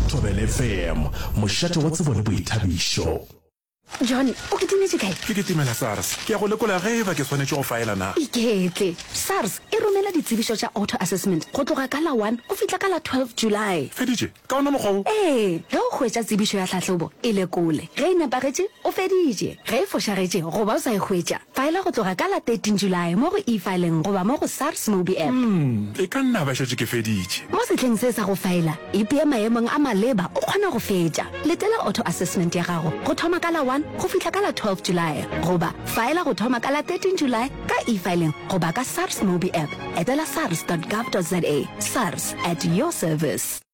Thobele FM, mošate wa tsebo le boithabišo. John, o kitimetše kae? Ke kitimela SARS. Ke ya go lekola ge e ba ke swanetše go faela na. Iketle. SARS e romela ditsebišo tša auto assessment go tloga ka la one go fihla ka la twelve July. Feditše? Ka ona mokgwa wo? Ee, ge o hwetša tsebišo ya tlhahlobo, e lekole. Ge e nepagetše, o feditše. Ge e fošagetše goba o sa e hwetša, Faela go tloga ka la 13 Julae mo go e-fileng goba mo go SARS Mobi App. Umm, e ka nna ba šetše ke feditše. Mo sehleng se sa go faela, ipee maemong a maleba o kgona go fetša. Letela auto assessment ya gago go thoma ka la 1 go fihla ka la 12 Julae goba faela go thoma ka la 13 Julae ka e-fileng goba ka SARS Mobi App. Etela sars dot gov dot za. Sars, at your service.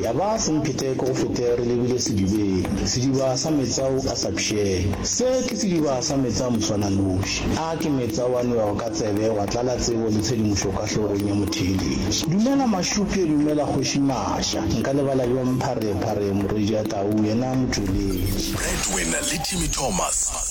Ya ba semphetheko go fete re lebile sedibeng, sediba sa metsa ao a sa pšheng. Se ke sediba sa metsa a moswananoši, a ke metsa ao a nwewago ka tsebe, wa tlala tsebo le tshedimošo ka hlogong ya motheeletši. Dumela Mašuke, dumela Kgoši Masha. Nka lebala bjang Pharephare, Morejia Tau, yena motšweletši. Breadwinner le Jimmy Thomas.